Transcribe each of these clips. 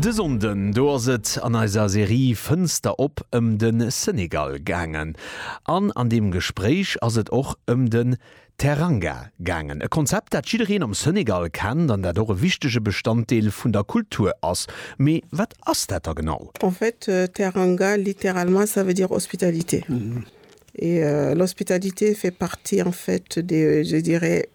De Sonnden do ass et an eiser Serie Fënster op ëm de Senegal gaangen. An an deem Gespréich ass et och ëm den Teranga gaangen. E Konzept, dat jiddereen am Senegal kennt an dat och e wichtege Bestanddeel vun der Kultur ass. Mee wat ass dat da genau? En fait, Teranga, littéralement, ça veut dire hospitalité. Et l'hospitalité fait partie, en fait, des, je dirais,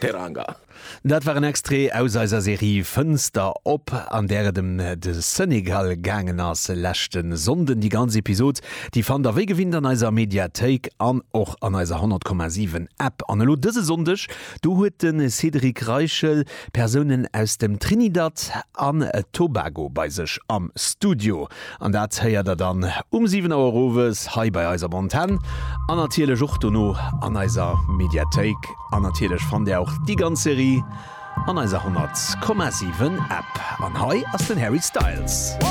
Teranga. Dat war en Extrait aus eiser Serie Fënster op, an där et em de Senegal gaangen ass leschte Sonnden. Déi ganz Episod, déi fannt der wéi gewinnt an eiser Mediathéik an och an eiser 100,7 App. An elo dëse Sonndeg, do huet de Cédric Reichel Persounen aus dem Trinidad an Tobago bei sech am Studio. An dat héiert der dann um 7 Auer owes hei bei eis op Antenn an natierlech och dono an eiser Mediathéik. An natierlech fannt Där och déi ganz Serie an eiser 100,7 App. An hei ass den Harry Styles.